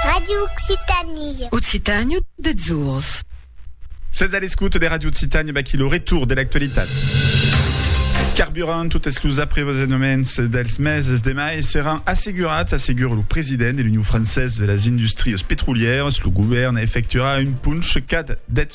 Radio Occitanie. Occitània deths jours. Sètz a l'escouta de Radio Occitània, vaquí lo retour de l'actualitat. Carburant, totes los aprevosenoments dels meses de mai seràn assegurats, assegura lo president de l'Union Française de las Industries Petrolièras. Lo govèrn efectuarà un punch cada 10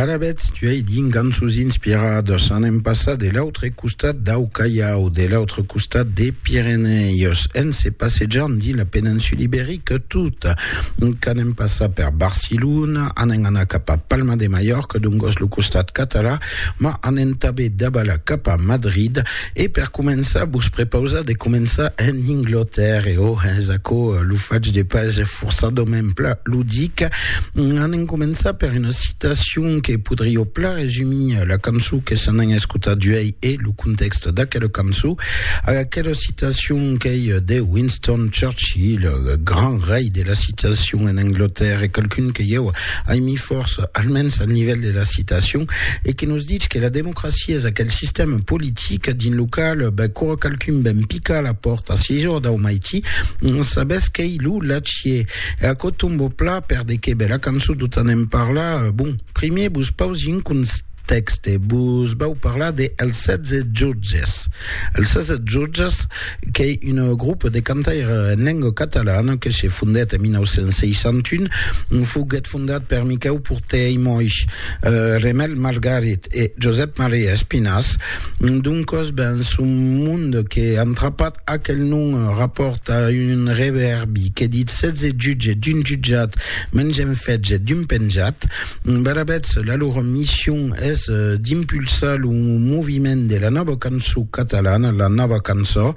Ara vètz, tuèi dins cançons inspiradas an en passat de l'autre costat dau Callao, de l'autre costat des Pirenèus, en se passejant dins la peninsula iberica tota, qu'an en passat per Barcelona, an en anar cap a Palma de Mallorca, dongos lo costat catalan, Ma anem tabé daba la cap a Madrid e per començar vos prepausa de començar en Inglotèrre e oh hens aquò lo fach de pas forçadament pla lo dic. Anem començar per una citacion que podrió pla resumir la cançó que se n'an escotat uèi e lo contèxt d'aquela cançó. Aquela citacion qu'ei de Winston Churchill, grand rei de la citacion en Inglotèrre, qualqu'un que ieu Aimí Fors, almens al nivèl de la citacion, e que nos ditz que la democracia es aquel sistèma politic dins lo qual quora qualqu'un ven picar a la pòrta se jo dau maití, sabètz qu'ei lo Lachier. E aquò tombo plat per de qué bèla cançon tot anèm parlar. Bon, primièr vos pausi un constat. Tèxte, Vos vau parlar de Els Setze Jutges. Els Setze Jutges qu'ei un grop de cantaire en lenga catalana que se fondèt en 1961. Foguèt fondat per Miquèu Porter i Moix, Remèl Margarit e Josèp Maria Espinàs. Doncòs, ben, son mond que an trapat aquel nom rapòrta un revèrbi que ditz Setze Jutges d'un jutjat, Mengem Fetge d'un penjat. Badabètz, la lor mission es d'impulsar lo moviment de la nòva cançó catalana, la nòva cançó,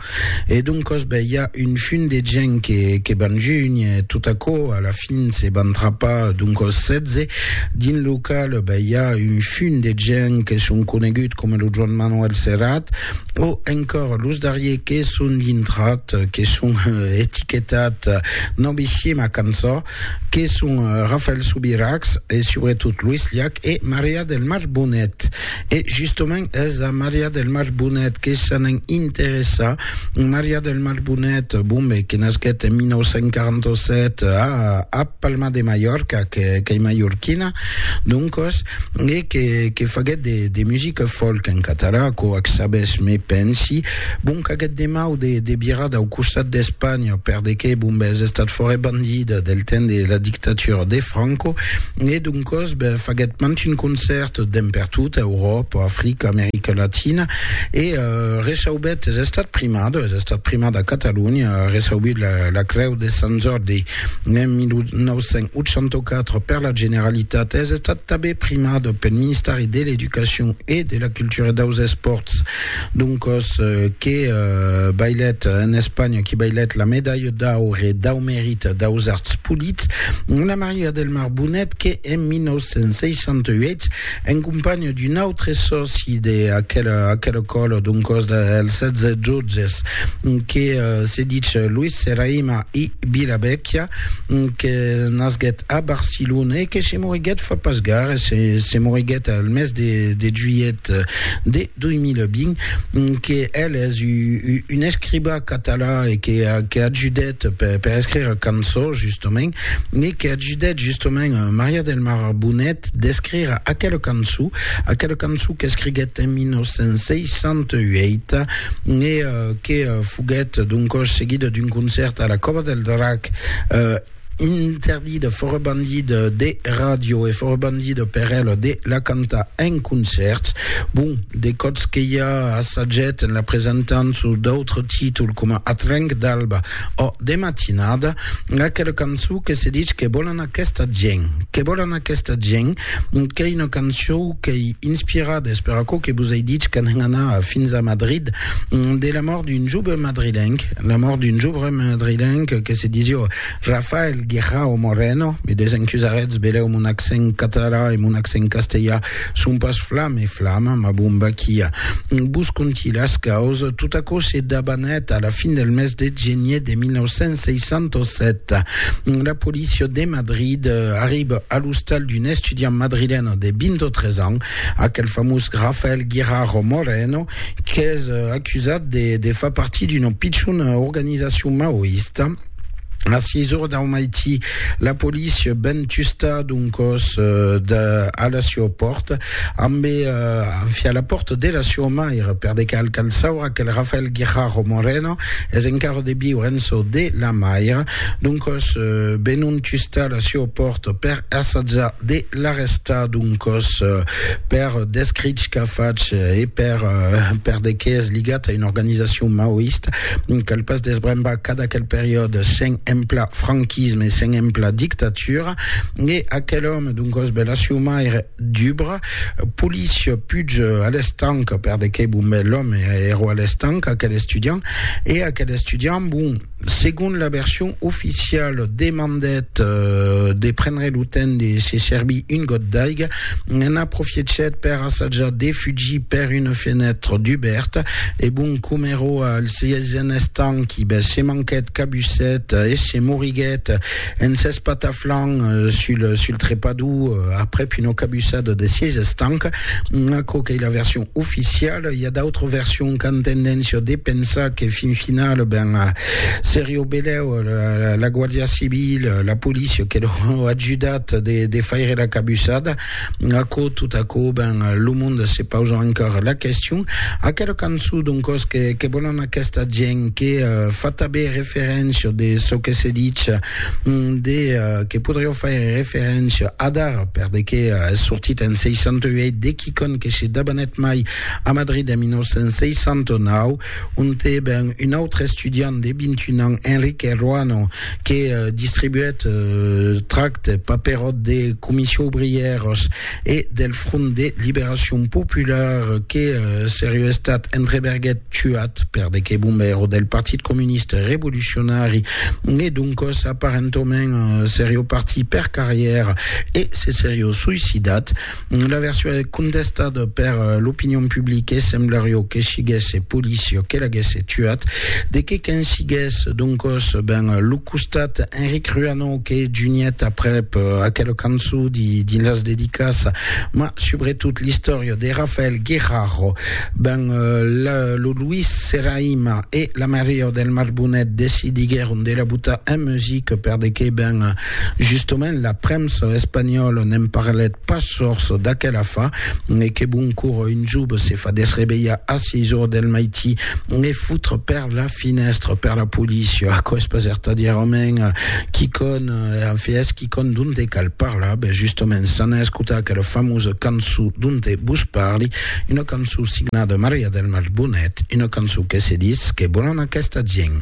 e doncòs ben i a un fum de gent que, que van junh, e tot aquò a la fin se van trapar, doncòs 16, dins lo cal ben i a un fum de gent que son conegut coma lo Joan Manuel Serrat, o encòr los darrier que son dintrat, que son etiquetat novicièma cançó. que son Rafael Subirachs e subretot Luis Llach e Maria del Mar Bonet. E justement es a Maria del Mar Bonet que s'anen interessar. Maria del Mar Bonet, bon ben, que nasquèt en 1947 a, a Palma de Mallorca, que, qu'ei mallorquina, doncos, e que que faguèt de de musica folk en català quò ac sabes me pensi bon qu'aguèt de mau de de virar dau costat d'Espanha per de que bon bes estat fòre bandida del temps de la dictatura de Franco e d'un còs be faguèt mant un concèrt demb per tota Euròpa Africa America Latina e reçaubèt es estat primada es estat primada a Catalonha reçaubut la la creu de Sant Jordi En 1984, per la Generalitat, es estat tanben primat pel Ministèri de l'Educacion e de la Cultura e daus Espòrts. Doncòs, que bailèt en Espanha, que bailèt la Medalha d'aure dau Merit daus Arts Polits, Anna Maria del Mar Bonet, que en 1968, en companha d'un autre sòci d'aquela aquela còla, doncòs dels 16 jotges, que se ditz Luis Serraima, i Vila Vècchia, que nasguèt a Barcelona e que se moriguèt fa pas gaire, se, se moriguèt al mes de, de juilhet de 2020, que el es u, u, un escribà català e que, que ajudèt per, per escrire cançó, justament, e que ajudèt, justament, Maria del Mar Bonet d'escrire aquela cançó, aquela cançó qu'escriguèt en 1968, e, que foguèt d'un còs seguida d'un concèrt a la Còva del Drac, interdida, fòra bandida de ràdio e fòra bandida per ela de la cantar en concèrts. Bon, de còps que i a assagèt en la presentant sus d'autres títols coma Atrenc d'alba, Ò, de matinada, aquela cançon que se dich Que volan aquesta gent, que volan aquesta gent, qu'ei una cançon qu'ei inspirada, es per aquò que vos ei dich qu'an hèn anar fins a Madrid, de la mòrt d'un joven madrilenc, la mòrt d'un joven madrilenc que se disió Rafael Guirao Moreno, me desencusarètz, velèu mon accent catalan e mon accent castelhan, Son pas flam e flam, ma bon Baquia. Vos conti las caus, tot aquò se dabanèt a la fin del mes de genier de 1967. La polícia de Madrid arriba a l'ostal d'un estudiant madrilèn de 23 ans, aquel famós Rafael Guirao Moreno, qu'es acusat de far partir d'una pichona organizacion maoista, A 6 ora dau maití, la polícia ven tustar d'un còs de, a la siua pòrta, ambe enfia la pòrta de la siua maire, per de cal cal saura que Rafael Guijarro Moreno es encara de viure en çò de la maire. D'un còs, venon tustar la siua pòrta per assatjar de La rèsta d'un còs per descrich qu'a fach e per per de qué es ligat a una organizacion maoista, cal pas desbrembar cas d'aquel periòde sen emplar franquisme e sen emplar dictatura, e aquel òme d'un còs bèla siumaire dubra, polís puig a l'estanc, per de qué bon bèl òme, èro a l'estanc, aquel estudiant, e aquel estudiant bon. Segon la version oficiala, demandèt de prendre lo temps de se servir un got d'aiga, en aprofiechèt per assajar de fugir per una fenètra dubèrta e bon com eró al sièisen estanqui, se manquèt, cabusèt e se moriguèt. En s'espataflant sul, sul trepador, aprèp una cabussada de sièis estancs, aquò qu'ei la version oficiala, i a d'autres versions qu'an tendéncia de pensar que fin final, ben, serie au belèu la, la Guàrdia Civila, la polícia que l'au ajudat de, de faire la cabussada. Aquò, tot aquò, ben, lo monde se pausa encara la question. Aquela cançon, doncòs, que, que volan aquesta gent, que uh, fa tabé referéncia de çò que se ditz, mm, de, uh, que podrió faire referéncia adar, per de que uh, es sortit en 68, de quicon que se dabanèt mai a Madrid en 1969, onte, ben, un autre estudiant de 21 ans, Enrique Ruano, que distribuèt tractes, paperòts de Comission Ouvrièrs e del Front de Liberacion Popular que seriu estat entreberguèt tuat per de que bombèro del Partit Comunista Revolucionari e doncòs aparentament seriu partit per carrièra e se seriu suicidat. La version es contestada per l'opinion publique, semblario que siguesse policia que l'aguesse tuat. De que qu'en sigues, doncos, ben, lo costat Enric Ruano que juniet aprep aquela cançon dins las dedicas, ma subretot l'istòria de Rafael Guerraro, ben, lo Luis Serraima e la Maria del Marbonet decidiguèron de la botar en musica per de que, ben, Justement, la premsa espanhòla ne'n parlèt pas sors d'aquela fa, e que bon cor un jove se fa desrevelhar a sièis ora del maití e foutre per la finèstra per la polícia? Aquò es pas ertadièrament quicòm, en fait, es quicòm donte cal parlar. Ben, justement, s'anà escotar aquela famosa cançó donte vos parli, una cançó signada Maria del Mar Bonet, una cançó que se ditz Que volan aquesta gent.